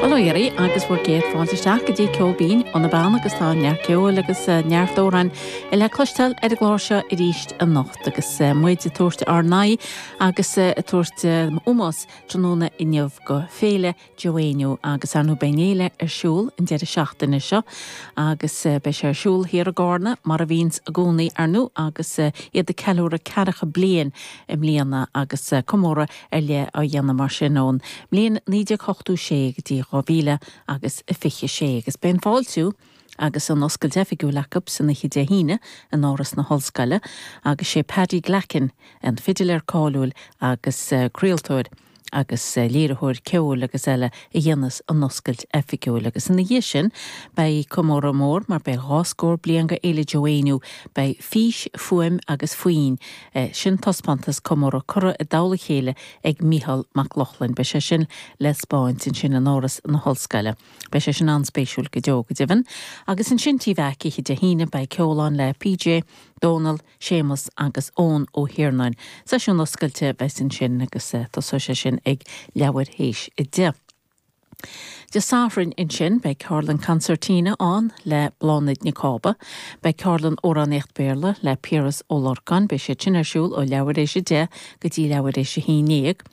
Bail ó Dhia oraibh agus bhur gcéad fáilte isteach go dtí Ceol Binn ó na Beanna agus tá neart ceoil agus neart amhráin le cloisteáil ar an gclár seo arís anocht agus muid ag tabhairt ár n-aghaidh agus ag tabhairt ómós tráthnóna inniu go Féile Joe Éinniú agus ar ndóigh Beidh an fhéile ar siúl an deireadh seachtaine seo agus beidh sé ar siúl thiar i gCarna mar a bhíonns i gcónaí ar ndóigh agus iad ag ceiliúradh 40 bliain i mbliana agus comóradh ar leith á dhéanamh mar sin ón mbliain 1986 go dtí 2000 agus a 26 agus beidh an fáiltiú agus an oscailt oifigiúil acu san oíche Dé hAoine in Áras na hOllscoile agus sé Paddy Glackin, an fidiléir cáiliúil agus craoltóir agus léiritheoir ceoil agus eile a dhéanfas an oscailt oifigiúil agus ina dhiaidh sin beidh comóradh mór mar beidh dhá scór bliain de Fhéile Joe Éinniú beidh fís, fuaim agus foinn. é sin taispeántas comóradh curtha i dtoll a chéile ag Mícheál Mac Lochlainn. Beidh sé sin le 'speáint ansin in Áras na hOllscoile. Beidh sé sin an-spéisiúil go deo, go deimhin. Agus ansin tí Mheaic oíche Dé hAoine beidh ceol ann le PJ, Dónal, Séamus agus Eoin Ó hIarnáin. Seisiún oscailte a bheas ansin agus tosóidh sé sin ag leathuair théis a deich. Dé Sathairn ansin beidh ceardlann Concertina ann le Bláthnaid Nic Cába, beidh ceardlann Amhránaíocht Béarla le Piaras Ó Lorcáin, beidh siad sin ar siúl ó leathuair éis a deich go dtí leathuair éis a haon ndéag.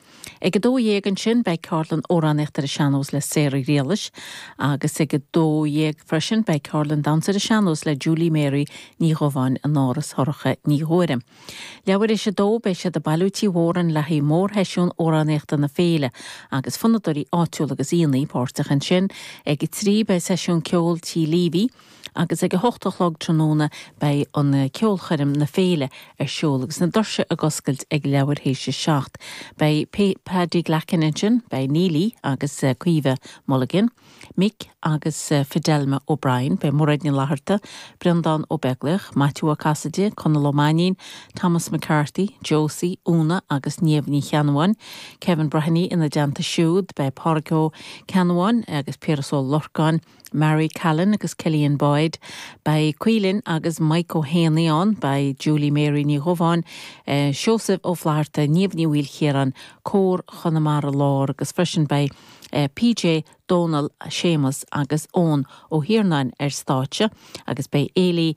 Ag a dó dhéag ansin beidh ceardlann Amhránaíocht ar an Sean-Nós le Sarah Ghriallais agus ag a dó dhéag freisin beidh ceardlann Damhsa ar an Sean-Nós le Julie Mary Ní Dhubháin in Áras Shorcha Ní Ghuairim. Leathuair éis a 2, beidh siad ag bailiú Tí Mhórain le haghaidh mórsheisiún amhránaíochta na féile agus fonnadóirí áitiúla agus aíonna páirteach ansin. Ag a trí, beidh seisiún ceoil Tí Leavy agus ag a hocht a chlog tráthnóna beidh an ceolchoirm na féile ar siúl agus na doirse ag oscailt ag leathuair éis a 7. Beidh Paddy Glackin ansin, beidh Néillidh agus Caoimhe Mulligan. Mick agus Fidelma O'Brien, beidh Mairéad Ní Fhlatharta, Breandán Ó Beaglaoich, Maitiú Ó Casaide, Conall Ó Mainín, Thomas McCarthy, Josie, Úna agus Niamh Ní Cheannabháin, Kevin Breheny, Ina dteannta siúd beidh Pádraig Ó Ceannabháin agus Piaras Ó Lorcáin, Mary Callan agus Cillian Boyd, beidh Caoilinn agus Mike Ó hÉanaí ann, beidh Julie Mary Ní Dhubháin, Seosamh Ó Flatharta, Niamh Ní Mhaoilchiaráin, Cór Chonamara Láir agus freisin beidh. PJ, Dónal, Séamus agus Eoin Ó hIarnáin ar stáitse agus beidh Eily